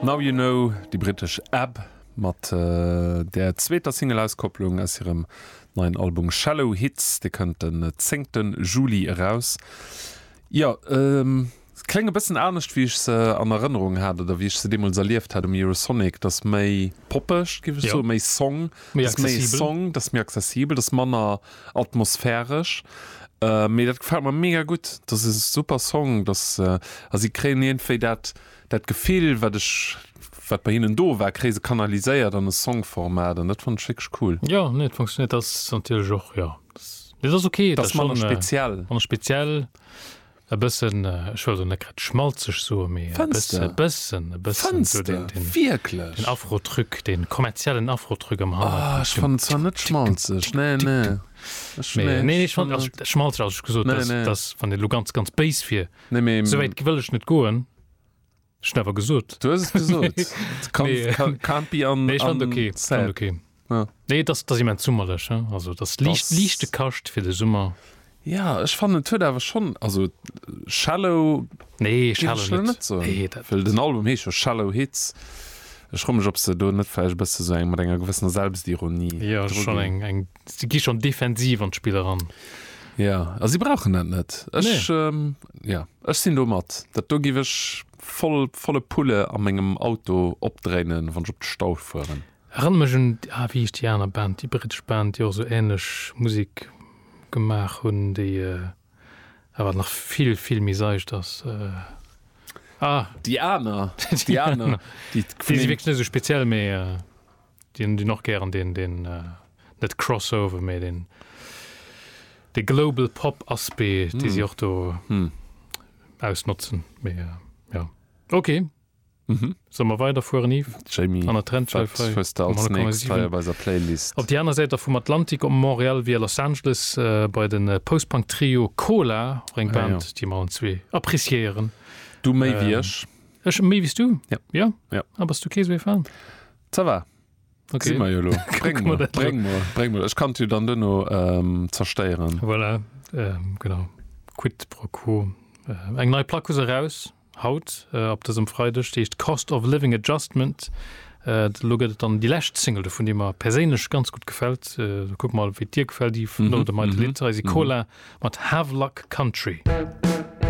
Now You Know, déi brittesch Ab mat der zweeter Single-Auskopplung aus hirem neien Album Shallow Hits. Dee kënnt den 10 Juli eraus. Jo, se kléngen e bëssen anescht, wéi ech se an Erënnerung hat oder wéi ech se deemools erlieft hat um Eurosonic. Dat ass méi poppeg, géif ech soen, méi Song. Dat ass méi Song, dat ass méi accessibel, dat ass manner. Atmosphäresch, mee dat gefält mer mega gutt. Dat ass e super Song, dass a si kréien iergendwéi dat dat Gefill, wat ech wat bei hinnen do war, kréie se kanaliséiert an e Songformat an dat fannen ech wierklech cool. Jo, nee, et funktionéiert. Dat ass natierlech och, jo, dat ass, mee dat ass ok. Dat ass manner speziell. Manner speziell. E bëssen, ech wëll elo net grad schmalzeg soen, mee e bësse, e bëssen, e bëssen esou den, den, Fënster, wierklech? den Afro-Truc, de kommerziellen Afro-Truc am Hannergrond. Ah, ech fannen zwar net schmalzeg, nee, nee. Ech, Mee, nee, nee, ech fannen- fannen- also, schmalzeg, also ech gesot, Nee, dass, nee. dass, wann een elo ganz, ganz béis wier, Nee, mee, esou wäit wëll ech net goen, Ech hun awer gesot. Du hues et gesot. Can't be unsaid. Nee, dat ass immens summerlech. Also dat ass liicht, liichte Kascht fir de Summer. Jo, ech fannen et huet awer schonn, also Shallow géif ech lo net soen, well den Album heescht jo Shallow Hits. Ech fro mech, ob se do net vläicht e bësse sou eng, mat enger gewëssener Selbstironie dru ginn. Jo, schonn eng si gi schon defensiv an d'Spill eran. Ja, a si brauchen dat net. Ech nee. ähm, ja, ech sinn do mat. Dat do giff ech voll, volle Pulle a mengem Auto opdréinen, wann ech op de Stau fueren. Erënnert mech un ah, wéi hieß déi aner Band, déi brittesch Band, déi och esou ähnlech Musik gemaach hunn, déi äh, awer nach vill, vill méi seicht ass. Äh, Ah, Déi aner, déi aner, déi si wierklech net esou speziell, mee. Äh, Dien dien och gären deen deen net Crossover mee deen dee Global Pop Aspect dee si och do ausnotzen mee jo ok solle mer weider fueren Yves? Jamie An der Trendschäif wat hei hues de um als nächst hei 100,7 op eiser Playlist? Op déi aner Säit der vum Atlantik op Montréal via Los Angeles bei de Post-Punk Trio Cola, och eng Ah jo. Band déi mer allen zwee appréciéieren. Du méi wéi ech. Ech méi wéi s du? Ja. Jo? Ja. Ah bass du kee sou ee Fan? Ça va. Okay. Si mer jo lo. Bréng mer, bréng mer, bréng mer. Ech kann d'Jut dann duerno ähm, zerstéieren. Voilà, ähm, genau. Quid pro quo. Äh, eng nei Plack hu se raus, haut, äh, ab dësem Freideg, déi heescht Cost of Living Adjustment. Äh, lo gëtt et dann déi lescht Single dovun, déi mer perséinlech ganz gut gefällt. Äh, kuck mal, wéi dir gefällt, Yves, Mhm, no dem heite mhm, Lied, eisi mhm. Cola mat Havelock Country.